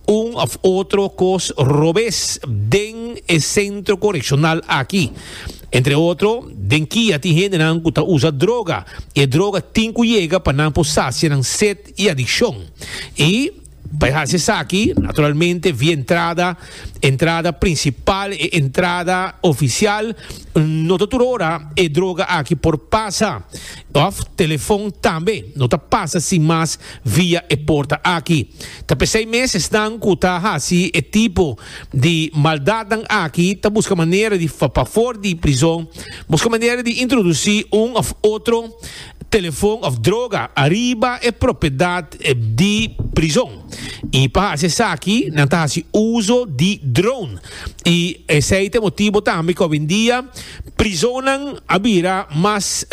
un of otro cos robes den e centro correccional aki. Entre otro, den kia tin hendenan cu ta usa droga y e droga tin cu yega pa nan por sacia nan set y adiccion. Y, pa e haci esaki, naturalmente via entrada, entrada principal, e entrada oficial, no ta tur ora e droga aki por pasa. Of telefon tambe no ta pasa sin mas via e porta aki. Ta p'esei mes esnan ku ta hasi e tipo di maldatnan aki ta buska manera di pafobor di prizon buska manera di introdusí un of otro telefon of droga ariba e propiedat di prizon i pa hasi esaki nan ta hasi uso di drone i esei ta e motibo tambe ku awendia Prizonnan a bira mas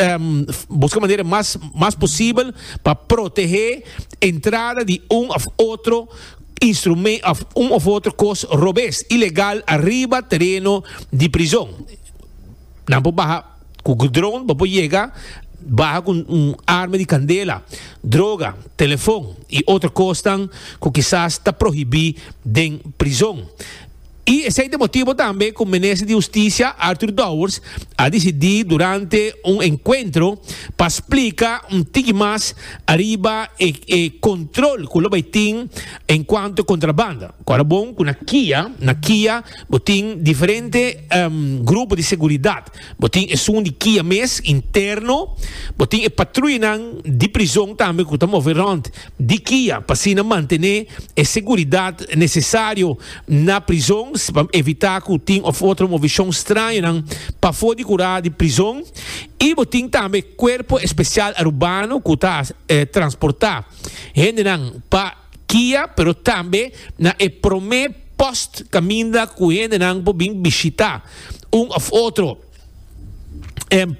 buska manera mas posibel pa protehé entrada di un òf otro un òf otro kos robes ilegal ariba tereno di prizon. Nan por baha ku drone, bo por yega baha ku un arma di kandela, droga, telefon i otro kosnan ku kisas ta prohibí den prizon. I esei t'e motibo tambe ku Minister di Hustisia, Arthur Dowers, a disidí durante un enkuentro pa splika un tiki mas ariba e e kontrol ku lo bai tin en kuantu e kontrabanda. Ku a lo bon ku na kia na kia bo tin diferente grupo di seguridat. Bo tin esun di kia mes, interno. Bo tin e patruyanan di prizon tambe ku ta move rònt di kia pa asina mantené e seguridat nesesario na prizon pa evitá ku tin òf otro movishon strañonan pafó di kurá di prizon. I bo tin tambe Kuerpo Espesial Arubano ku ta transportá hendenan pa. Kia, pero tambe na e promé post kaminda ku hendenan por bin bishitá un òf otro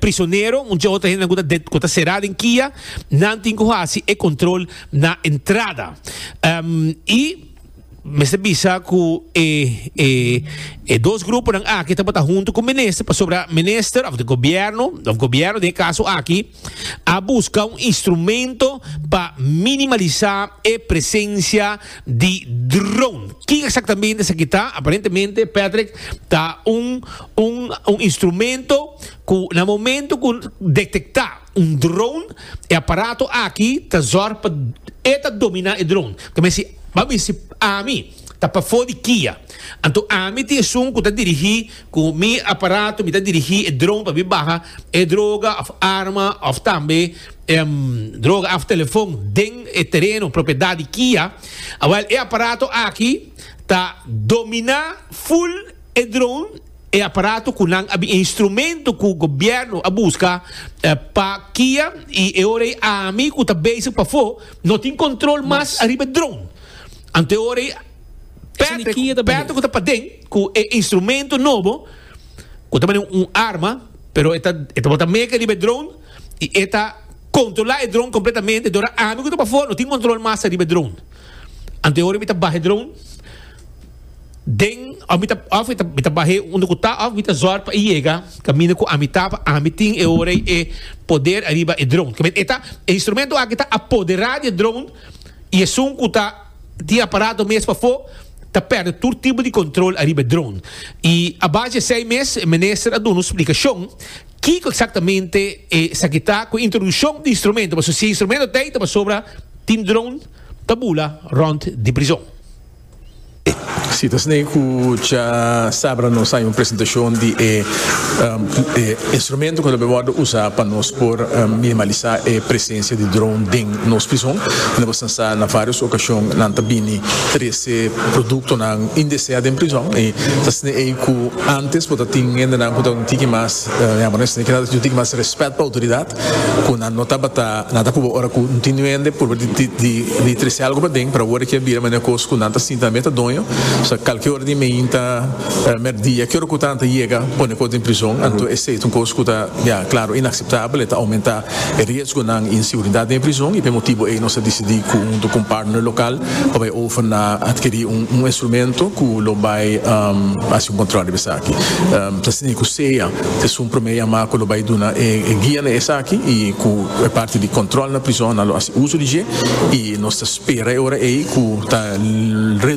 prisonero, mucha otro hende ku ta ku ta será den kia, nan tin ku hasi e kòntròl na entrada. I mester bisa ku e e e dos gruponan aki tabata huntu ku minister pasobra minister òf di gobièrnu òf gobièrnu den e kaso aki, a busca un instrumento pa minimalisá e presencia di drone. Kin exactamente esaki ta? Aparentemente, Patrick, ta un un un instrumento cu na momento cu detecta un drone, e aparato aki ta zorg pa e ta domina e drone. Ta mesti, ba mesti ami. ta pafó di kia. Anto ami tin esun ku ta dirigí ku mi aparato, mi ta dirigí e drone pa mi baha e droga òf arma òf tambe droga òf telefon den e tereno, propiedat di kia. Awèl e aparato aki ta dominá ful e drone, e aparato ku nan a bin e instrumento ku gobièrnu a buska pa kia i e ora ei ami ku ta bezig pafó no tin kontrol mas ariba e drone. Ante ora i Patrick, Patrick ku ta paden ku e instrumento nobo ku ta mane un arma, pero e ta e ta bota meke riba e dron i e ta kontrolá e dron kompletamente dora ami ku ta pafó no tin kontrol mas riba e dron. Ante ora mi ta baha e dron den òf mi ta òf mi ta mi ta bah'é unda ku ta òf mi ta zòr pa e yega kaminda ku ami ta pa ami tin e ora ei e poder ariba e dron. Ku e ta e instrumento aki ta apoderá di e dron. y esun cu ta tin aparato mes pafo ta perde tur tipo di control ariba e drone. Y a base di esey mes e Minister a duna su splicacion kico exactamente esaki ta cu e introduccion di instrumento, pasobra si e instrumento ta ey ta pasobra tin drone ta bula rond di prizon. Citas n'e cu cha sabra nos hay un presentacion di e instrumento cu ta por wordo usa pa nos por minimalisa e presencia di drone den nos prison. Y nos basta sa na varios ocasion nan ta bini trece productonan indesea den prison y ta sne ey cu antes bo ta tin hendenan cu ta un tiki mas, yambo nan e sne, cu ta tin un tiki mas respet pa autoridad. cu nan no tabata nan ta cuba ora cu no tin duende purba di trece algo paden pero awor aki a bira manera cos cu nan ta sinta tambe ta doño so calki ora di mainta merdia ki ora cu nan ta yega pone cos den prizon anto esey ta un cos cu ta ya claro inaceptabel y ta aumenta e riesgonan y inseguridad den e prizon y p'e motibo ey nos a dicidi cu hunto cu un partner local pa bay over na adquiri un instrumento cu lo bay haci un control riba esaki. Nos tin cu sea esun prome yama cu lo bay duna e guia na esaki y cu e parti di control na prizonnan lo haci uzo di dje y nos ta spera e ora ey cu ta reduci.